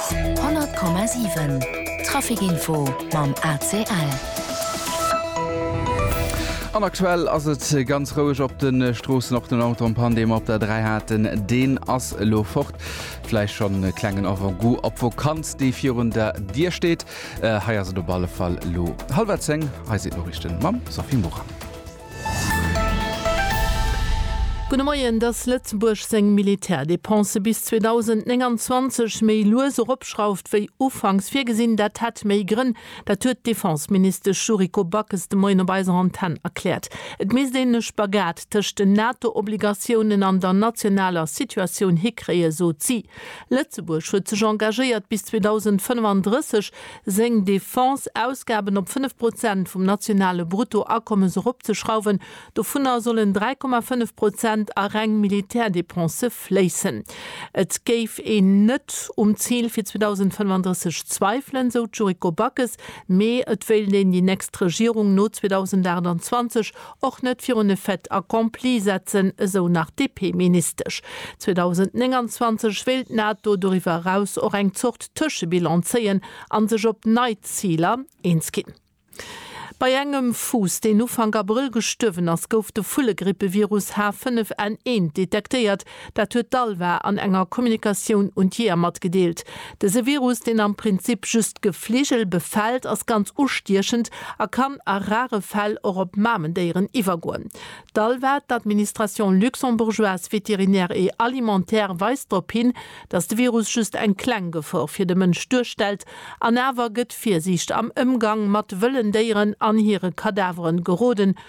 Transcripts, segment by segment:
100,7 Traficinfo mam ACL. An aktuell ass et ganz roueg op de Stroossen, och den Autompand, dee mer op der 3 haten, deen ass elo fort. Vläicht schonn e klengen Avant-goût op d'Vokanz, déi virun der Dier steet. Hei ass et op alle Fall elo hallwer zéng. Hei sinn d'Noriichten mam Sophie Morang. Gudde Moien, Dass Lëtzebuerg seng Militärdepensë bis 2029 méi lues eropschrauft wéi ufanks virgesinn, dat hätt méi Grënn. Dat huet d'Defenseministesch Yuriko Backes de Moien op eiser Antenn erkläert. Et misst een e Spagat tëscht den NATO-Obligatiounen an der nationaler Situatioun hikréien, sot si. Lëtzebuerg huet sech engagéiert, bis 2035 seng Defense-Ausgaben op 5 Prozent vum nationale Bruttoakommes eropzeschrauwen. Dovunner sollen 3,5 Prozent a reng Militärdepensë fléissen. Et géif een net um Zil fir 2035 zweifelen, sou d'Yuriko Backes, mee et wéilt een déi nächst Regierung no 2028 Och net virun e Fait accompli setzen, esou nach d'DP-Ministesch. 2029 wéilt d'NATO doriwwer eraus och eng Zort Tëschebilan zéien a sech op nei Ziler eens ginn. Bei engem Fuuss, deen Ufank Abrëll gestuerwen ass, gouf de Vullegrippevirus H5N1 detektéiert. Dat huet d'ALVA an enger Kommunikatioun un d'Jeeër matgedeelt. Dëse Virus, deen am Prinzip just Gefligel befält, ass ganz ustiechend a kann a rare Fäll och op Mamendéieren iwwergoen. D'ALVA, d'Administration luxembourgeoise vétérinaire et alimentaire, weist drop hin, datt de Virus just eng kleng Gefor fir de Mënsch duerstellt an awer gëtt Virsiicht am Ëmgang mat wëllen Déieren an hire Kadaveren geroden,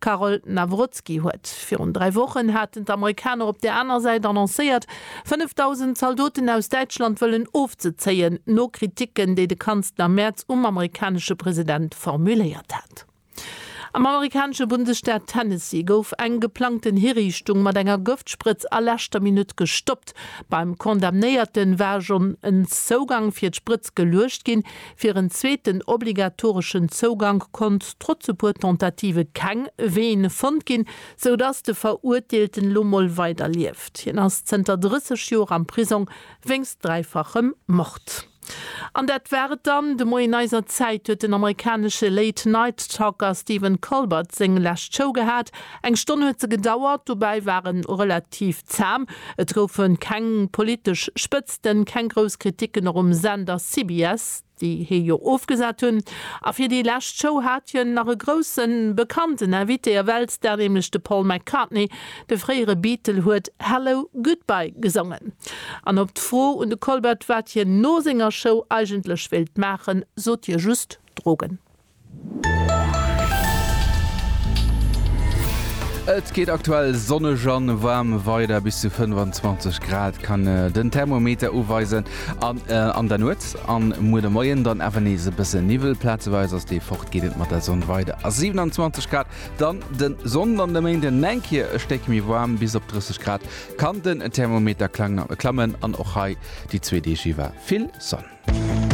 Karol Nawrocki huet. Virun dräi Wochen haten d'Amerikaner op der aner Säit annoncéiert, 5.000 Zaldoten aus Däitschland wëllen ofzezéien, no Kriticken, déi de Kanzler Merz um amerikanesche President formuléiert hat. Am amerikanesche Bundesstaat Tennessee gouf eng geplangten Hiriichtung mat enger Gëftsprëtz a leschter Minutt gestoppt. Beim Condamnéierte war schonn en Zougang fir d'Sprëtz geluecht ginn, Fir en zweeten obligatoreschen Zougank konnt trotz e puer Tentative keng Ween fonnt ginn, sou dass de Verurteelten elo mol weider lieft. Hien ass zënter 30 Joer am Prisong wéinst dräifachem Mord. An dat war et dann de Moien. Eiser Zäit huet den amerikanesche Late Night Talker Stephen Colbert seng lescht Show gehat. Eng Stonn huet se gedauert, dobäi war en relativ zam, et goufe keng politesch Spëtzten, D'Journalisten keng grouss Kritiken och um Sender CBS, déi hie jo ofgesat hunn. A fir déi lescht Show hat hien nach e grousse bekannten Invité, a Weltstar, nämlech de Paul McCartney. De fréiere Beatle huet Hello, Goodbye gesongen. An op d'Fro un de Colbert, wat hien no senger Show eigentlech wéilt maachen, sot hie just, Drogen. Et geet aktuell sonneg an waarm weider, bis zu 25 Grad kann den Thermometer uweisen an an der Nuet an muer de Moien dann awer nees e bësse Niwwel. Plazeweis ass dee fort, geet et mat der Sonn weider a 27 Grad dann de Sonnden. An de Méinde eng Kéier e Stéck méi waarm, bis op 30 Grad kann den Thermometer klammen an och hei déi zwee Deeg iwwer vill Sonn.